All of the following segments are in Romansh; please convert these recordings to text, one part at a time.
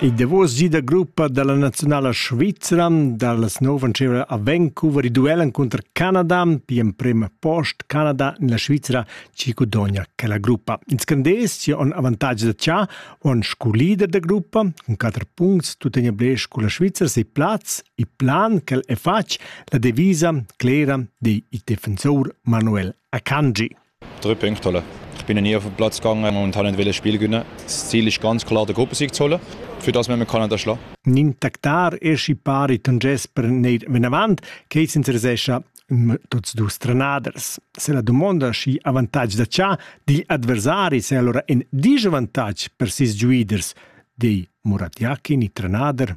Il davos gi da gruppa dalla naziunala svizra dallas nov antira a Vancouver duel encunter Canada pli emprem post Canada en la Svizra chi gudogna quella gruppa. In scandez chi on avantatg da cha on scu leader da gruppa cun 4 puncts tuttegna blech cu la Svizra sei plaz e plan ch'el è fatg la devisa clera di il defensor Manuel Akanji. Drei Punkte holen. Ich bin nie auf dem Platz gegangen. Momentan nicht wollen spielen können. Das Ziel ist ganz klar, der Gruppensieg zu holen. Für das müssen wir können schlagen. Nin tactar e scippari ton Gesper neir vinavant, che s'interesescha tuts dus trenaders. Se la domanda schi avantage da cha digl adversari se allora in disavantage per sis giuiders, di Murat Yakin, i trenader.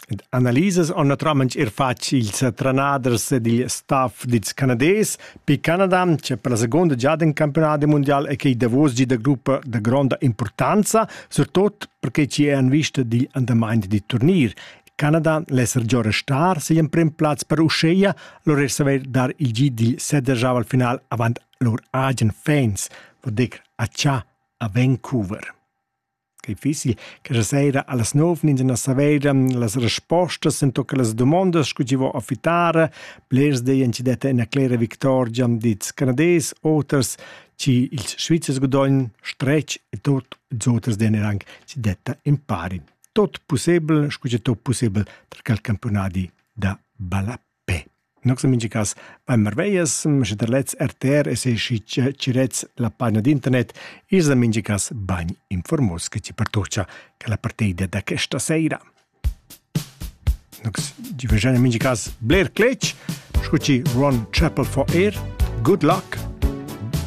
ed analisas han naturalmaing eir fat ils trenaders ed il staff dils Canadais per Canada, che per la seconda giada in campionat mundial e che è davos gi da gruppa da gronda importanza, surtot perché ci è en vista digl andament di turnier. Canada l'esser già restar si in prim plaz per Uscheia, lor saver dar il gi dil sedergiava al final avant lor agen fans, vor decr a Cha a Vancouver. Quei fiss quella sera allas nov ins saveida las respostas ento quellas dumondas sco chi vo a fitare. Blers deien chi detta ina clera victorgia dils Canadais, oters chi ils Svizzers gudogn stretg e tot ils oters deien er anc chi detta impari. Tot pussebel, scu che tot pussebel, tra quel campionadi da ballap. Be. Nox in mincha cas bain marveglias, sche der lets RTR e se schi chi rets la pagina d'internet, is da mincha cas bain informos che ti pertocha che la partida da questa seira. Nox, di vegian in mincha cas bler cletg, scu ci Ron Chapel for air, good luck,